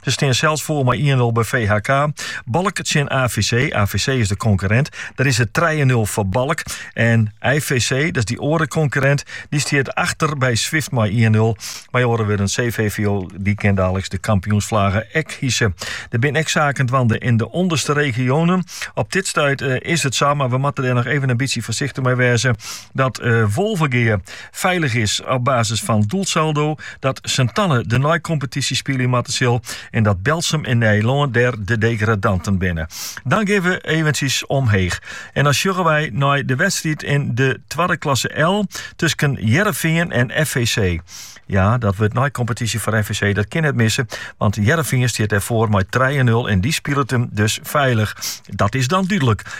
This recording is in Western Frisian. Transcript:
Se stean sels foar mei ien nul by VHK. Balk tsjin AVC. AVC is de konkurrent. Dêr is it 3 nul foar Balk. En IJVC, dat is dy oare konkurrent, dy stiet achter by Swift mei 1 nul. Mei oare wurden, CVVO dy kin daliks de kampioensflagge ek hise. Der bin ek saken dwaande yn de ûnderste regionen. Op dit stuit eh, is it sa, mar we moatte der noch even in bytsje foarsichtich mei wêze, dat eh, Wolvegea feilich is op basis fan it doelsaldo, dat Sint-Anne de neikompetysje spylje moatte sil en dat Berltsum en Nijlân dêr de degradanten binne. Dan gean we eventsjes omheech en dan sjogge wy nei de wedstriid yn de twadde klasse L tusken Hearrenfean en FVC. Ja, dat wurdt neikompetysje foar FVC, dat kin net misse, want Hearrenfean stiet dêr foar mei trije nul en dy spilet him dus feilich. Dat is dan dúdlik.